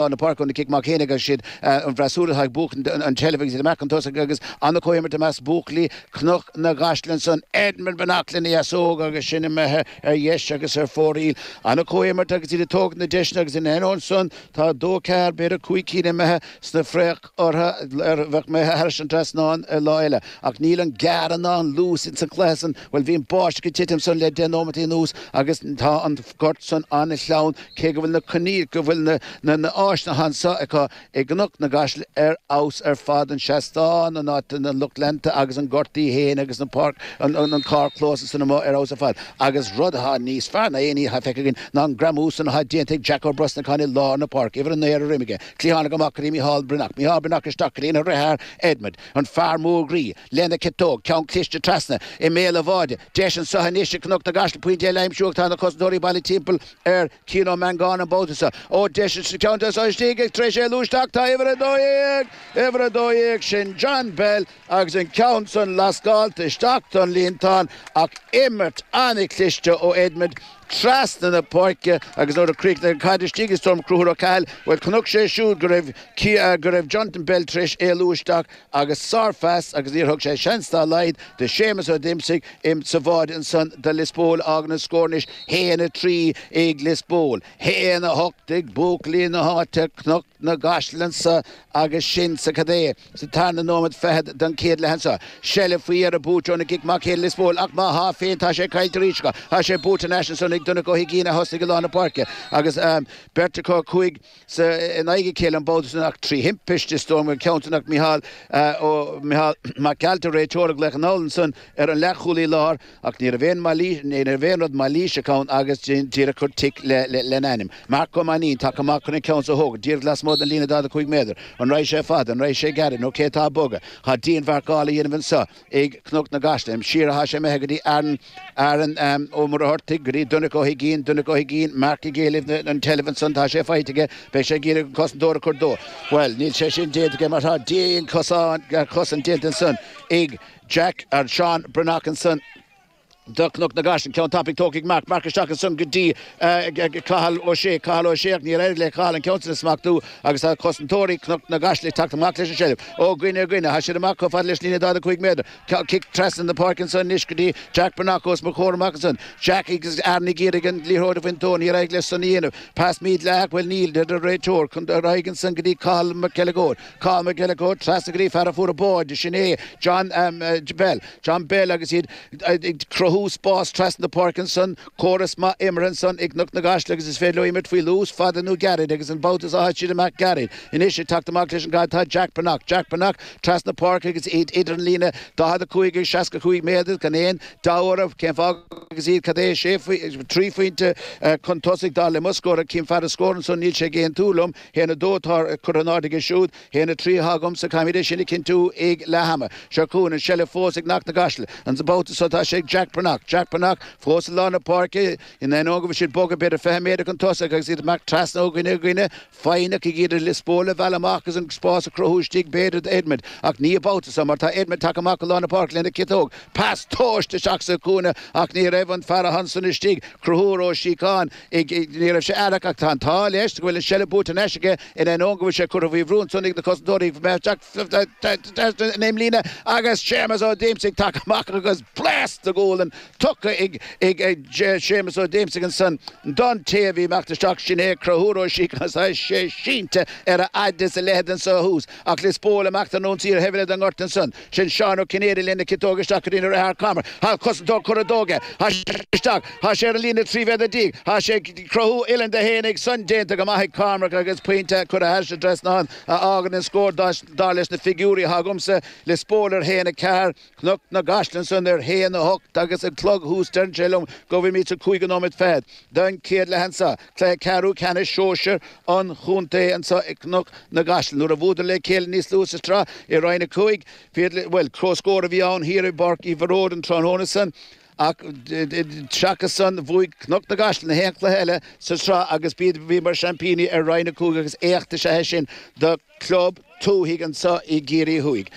lár na páirce ón cic amach céanna agus siad an bhfreasúra atá ag buachan an tseilbh agus iad amach chun tosaigh agus an-chomhimirt i measc buachaillí Chnoc na gCaiseal ansan, Edmond Breathnach lena dheasóg agus sin imithe ar dheis agus ar fóraoil. An-chomhimirt agus iad ag tógaint na deiseanna agus in ainneoin san tá dó ceathair, b'fhéidir cúig cinn imithe sna ortha a bheadh imithe thairis an trasnán ar lá eile. Ach níl an gearradh ná an luas ins an cluiche san. Bhuel, bhí an báisteach ag titim ansan le deich nóimeataí anuas agus tá an gort san an-shleamhain cé go bhfuil na coinníll, go bhfuil na n-áiseanna anso acu i gCnoc na gCaiseal ar fheabhas ar fad, an seastán, an áit do na lucht leanta agus an gort í fhéin agus na páirc, an carrchlós ansan amuigh ar fheabhas ar fad. Agus rud athá níos fearr ná aon ní athá feicthe againn ná an greamú san athá déanta ag Jack Ó Brosnacháin i lár na páirce, uimhir a naoi ar a dhroim aige. Cliathánaigh amach go dtí Mícheál Breathnach, Mícheál Breathnach isteach go dtína dhriotháir Edmond, an fear mór groí, lena chiotóg, ceann cliste trasna i mbéal an bháide. Deis anseo anois ag Cnoc na gCaiseal pointe eile a aimsiú ach tá na cosantóirí bailithe timpeall ar Chian Ó Meangáin an babhta seo. Ó, deis anseo, ceann deas istigh ag tar éis éalú isteach tá uimhir 12, uimhir 12, sin John Bell agus an ceann san lascálta isteach don líontán ach imirt an-chliste ó Edmond. trasna na páirce agus nuair a chríochnaigh an caid istigh, is dóigh liom, Cruthúr Ó Cathail, bhuel chonaic sé siúd go raibh, go raibh Jonathan Bell tar éis éalú isteach agus sár-phas agus níor thug sé seans dá laghad do Séamus Ó Díomasaigh insa bháide ansan do Lios Póil a fhágann an scór anois 1-3 ag Lios Póil, 1-8 ag buachaillí na háite, Cnoc. na gCaiseal anso agus sin sa cad é sa tarna nóiméad fichead den chéad leath anseo. Seilbh faoi dheireadh buaite ón gcic amach ag Lios Póil ach má thá féin tá sé caillte arís acu. Thá sé buaite ar n-ais ansan ag Donncha Ó hUiginn a thosnaigh i lár na páirce agus beirt acu cúig sa in aghaidh a chéile an babhta sin ach trí thimpiste is dóigh liom an ceann sin ach Micheál Mac Gearailt an réiteoir ag glaoch anall ansan ar an leathchúlaí láir Ach ní raibh aon rud mailíseach ann agus díreach chuir tic lena ainm. Marc Ó Mainnín, tagtha amach chun an ceann seo a thógaint, díreach lasmuigh den líne 45 méadar. An rachaidh sé fada? An rachaidh sé gairid? Nó cé atá ag bogadh? Tá dianmharcáil á dhéanamh anseo ag Cnoc na gCaiseal. Siar atá sé imithe go dtí Aaron Ó Muircheartaigh, go dtí Donncha Ó hUiginn. Donncha Ó hUiginn, Marc ag éileamh an tseilbh ansan. Tá sé faighte aige. Beidh sé ag iarraidh an cosantóir a chur dó. Bhuel, níl sé sin déanta aige mar tá dianchosaint déanta ansan ag. Jack ag Seán Breathnach ansan do Cnoc na gCaiseal, ceann tapaidh tógtha ag Marc, Marc isteach ansan go dtí Cathal Ó Sé, Cathal Ó Sé ach níor éirigh le Cathal an ceann sin a smachtú agus tá cosantóirí Cnoc na gCaiseal ag teacht amach leis an seilbh. Ó dhuine go duine, thá siad amach chomh fada leis an líne 45 méadar. Cic trasna na páirce ansan anois go dtí Jack Breathnach os mo chomhair amach ansan. Jack agus Aaron ag iarraidh an liathróid a bhaint dó, níor éirigh leis san a dhéanamh. Pas mídhleathach, bhuel níl, deir an réiteoir, ar aghaidh ansan go dtí Cathal Mac Uileagóid. Conor McElligott trasna go dtí an fear a fuair an báide, sin é John Bell, John Bell agus iad ag cruthú spás trasna páirce ansan, córas maith imeartha ansan ag Cnoc na gCaiseal agus is féidir leo imirt faoi luas, fada nó gairid agus an babhta seo thit siad amach gairid. Anois ag teacht amach leis an gcaid tá Jack Breathnach, Jack Breathnach trasna páirce agus iad idir an líne 45 agus 65 méadar, gan aon deabhadh orthu cén fáth agus iad cad é sé, trí phointe chun tosaigh dar le mo scór ach fear an scóir ansan níl sé ag aontú liom. A haon a dó atá curtha in airde aige siúd, a haon a trí atá agamsa, caithfimid é sin a chinntiú ag leath ama. Seo chugainn an tseilbh fós ag Cnoc na gCaiseal. An babhta so tá sé ag Jack Breathnach. Jack Breathnach fós i lár na páirce. In ainneoin go bhfuil siad bogtha b'fhéidir 20 méadar chun tosaigh agus iad ag imeacht trasna ó dhuine go duine, foighneach ag iarraidh Lios Póil a mhealladh amach agus an spás a chruthú istigh b'fhéidir do Edmond. Ach ní an babhta so mar tá Edmond tagtha amach go lár na páirce lena chiotóg. Pas tomhaiste isteach sa chúinne ach ní raibh an fear ansan istigh. Conchúr Ó Síocháin. Ní raibh sé aireach ach tá an t-ádh leis go bhfuil an seilbh buaite anois aige in ainneoin go bhfuil sé curtha faoi bhrú ansan ag na cosantóirí. Ag imeacht isteach ón imlíne agus Séamus Ó Díomasaigh tagtha amach agus blast de ghualainn tugtha ag Séamus Ó Díomasaigh ansan don té a bhí ag imeacht isteach, sin é Conchúr Ó Síocháin agus tá sé sínte ar a fhaid is a leithead anso thuas ach Lios Póil amach don ionsaí ar an taobh eile den ngort ansan. Sin Seán Ó Cinnéide lena ciotóg isteach go dtí a dheartháir Cormac tá an cosantóir curtha de aige. Tá sé isteach. Tá sé ar an líne trí mhéadar déag. Tá sé ag cruthú uillinn dó fhéinig. San déanta go maith ag Cormac agus pointe curtha thairis an trasnán a fhágann an scór dar leis na figiúirí atá agamsa Lios Póil ar a haon a ceathair Cnoc na gCaiseal ansan ar a haon a hocht agus an clog thuas deireann sé liom go bhfuilimid sa cúigiú nóiméad fichead den chéad leath anso. Cluiche ceathrú ceannais sóisear an chontae anso i gCnoc na gCaiseal nuair a bhuadar le chéile níos luaithe sa tsraith i Roinn 5. Bhuel, comhscór a bhí ann thiar i bPáirc Uí Bharóid an tráthnóna san ach seachas san bhuaigh Cnoc na gCaiseal nach aon chluiche eile sa tsraith agus bhíodar mar sheaimpíní ar Roinn 5 agus éacht is ea é sin do chlub tuaithe anso i gCiarraí Thuaidh.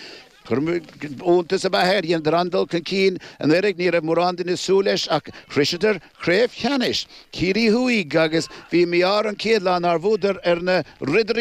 Iontas ab ea é, dheineadar an-dul chun cinn anuraidh ach ní raibh mórán duine ag súil leis ach shroiseadar craobh cheannais Chiarraí Thuaidh agus bhí mí-ádh orthu an chéad lá nár bhuadar ar na